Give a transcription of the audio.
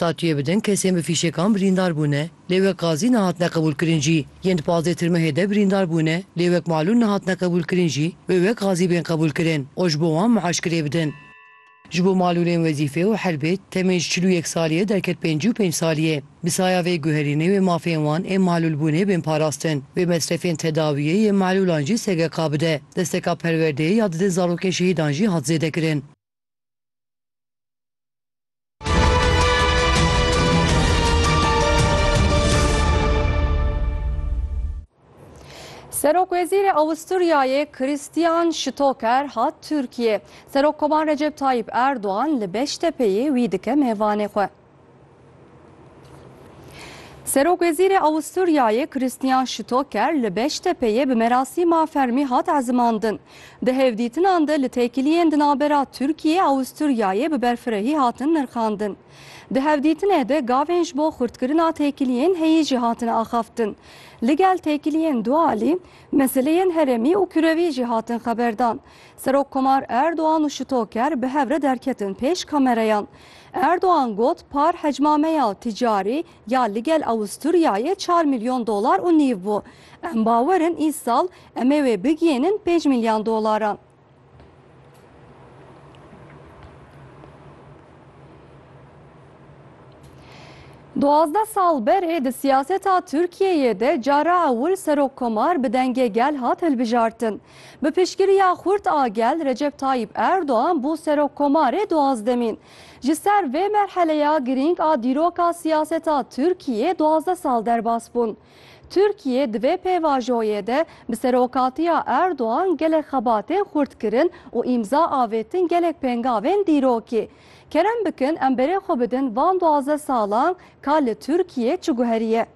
Tatiyê bi din kesên bi fîşekan birîndar bûne, lê wek gazî nehatine qebûlkirin jî. Yên di pazdeh tirmehê de birîndar bûne, lê wek malûl nehatine qebûlkirin jî, wê wek gazî bên qebûlkirin û ji bo wan miaşkirê bidin. Ji bo malûlên wezîfê û herbê temên ji çil û yek saliyê derket pêncî û pênc saliyê. Bi saya vê guherînê wê mafên wan ên malûlbûnê bên parastin. Wê mesrefên tedawiyê yê malûlan jî SGK bide. Desteka perwerdeyê ya didên zarokên şehîdan jî hat zêdekirin. Serokwezîrê Awisturyayê Christian Stoker hat Tirkiyê. Serokkovan Recep Tayyîp Erdogan li Beştepeyê wî dike mêvanê xwe. Serokwezîrê Awisturyayê Christian Stoker li Beştepeyê bi merasîma fermî hat ezimandin. Di hevdîtinan de li têkiliyên di navbera Tirkiyê Awisturyayê bi berfirehî hatin nirxandin. Di hevdîtinê de gavên ji bo xurtkirina têkiliyên heyî jî hatin axaftin. Ligel têkiliyên du alî, meseleyên herêmî û kurewî jî hatin xeberdan. Serokkomar Erdogan û Stoker bi hev re derketin pêş kamereyan. Erdogan got par hecma me ya ticarî ya li gel Awisturyayê çar milyon dolar û nîv bû. Em bawer in îsal em ê wê bigihînin pênc milyon dolaran. Duwazdeh sal berê di siyaseta Tirkiyeyê de cara ewil serokkomar bi dengê gel hat hilbijartin. Bi piştgiriya xurt a gel Recep Tayyîp Erdogan bû serokkomarê duwazdemîn. Ji ser vê merheleya girîng a dîroka siyaseta Tirkiyê duwazdeh sal derbas bûn. Tirkiye di vê pêvajoyê de bi serokatiya Erdogan gelek xebatên xurt kirin û îmza avêtin gelek pêngavên dîrokî. Kerem bikin em berê xwe bidin van duwazdeh salan ka li Tirkiyê çi guheriye.